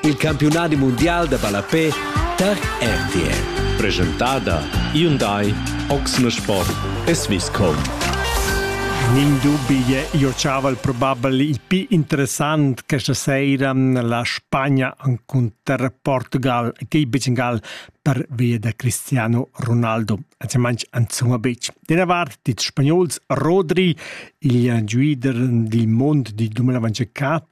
Il campiunadi mundial da ballapè tar RTL. Presentada Hyundai, Oxne Sport e Swisscom. Nin dubi je io chaval probabel il più interessant questa sera la Spagna incontra Portugal e che Bengal per via da Cristiano Ronaldo. Also manch anzuma bec. Della vart dits spagnols Rodri, il guider del mondo di 2024,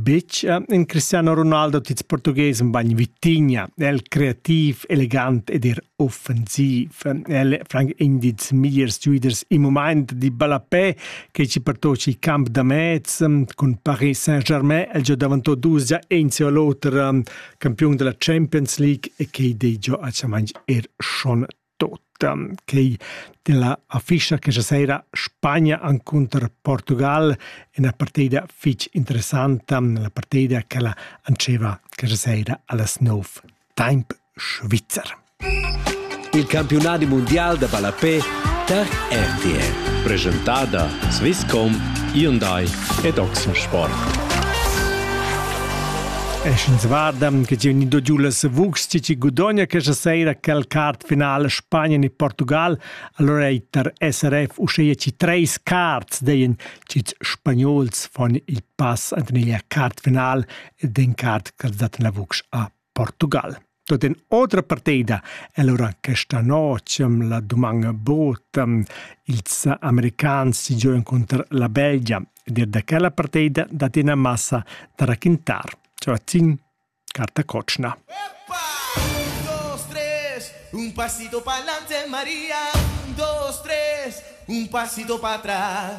Betg en Cristiano Ronaldo tits portughes un bagn vitigna, el creativ, elegant ed er offensiv. El franc in dits migliers giuiders in moment di ballapé che ci pertoci il camp da mez cun Paris Saint-Germain, el già davantò dus già in seu l'oter campion della Champions League e che dei già a chamanj er schon tota quei della afischa che sera Spagna encunter Portugal è una partida fitch interessanta, la partida che la anceva che sera allas nov temp Schweizer. Il campionat mondial de ballapé tar RTL. Presentada Swisscom, Hyundai ed Oxensport. E sch'ins varda che giu ni do giu la Savux ti chi gudogna questa sera quel cart finale Spagna e Portugal, allora ei tar SRF uscheia ci treis carts, deien chits spagnols fon il pass ant neglia cart final ed en cart che dat la Vux a Portugal. Tot in otra partida è lura questa notg ehm, la duman bod ehm, ils americans si giu encunter la Belgia ed er da quella partida dat ina massa da raquintar. Ciao a tin, carta Cocina. Un pasito pa'lante Maria, un, dos, tres, un pasito pa' atrás.